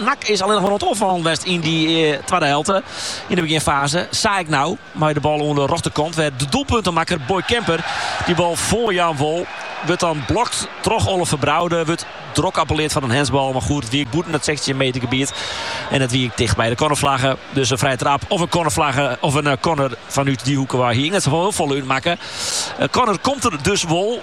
NAC is allinnich mar oan it oanfallen west yn dy twadde helte. Yn de beginfaze sa ek nou mei de bal oan de rjochterkant. Wêr't de doelpuntemakker Boy Kemper dy bal foarjaan wol. Wurdt dan blokt troch Oliver Braude. Wurdt drok appelleard foar in handsbal. Mar goed, it wie ek bûten it sechstjin meter gebiet. En it wie ek ticht by de cornerflagge. Dus in frije trap of in cornerflagge of in corner fanút dy hoeke wei hie eins net hiel folle útmakke. In corner komt der dus wol.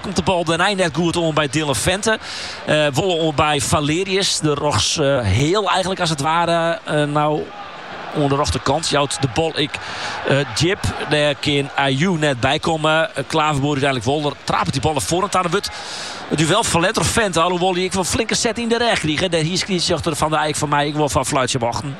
Komt de bal dêrnei net goed oan by Dylan Vente. wolle oan by Valerius. De rogs heel eigenlijk als het ware. nou oan de rechterkant. Jouwt de bal ik uh, eh, Jip. Daar kan Ayu net bij komen. Eh, Klaverboer uiteindelijk wel. Er trapt die ballen voor het aan de wut. Het duel van Letter Vent. Alhoewel die ik wel flinke set in de rij kreeg. Daar hier schiet achter Van de Eijk van mij. Ik wil van fluitje wachten.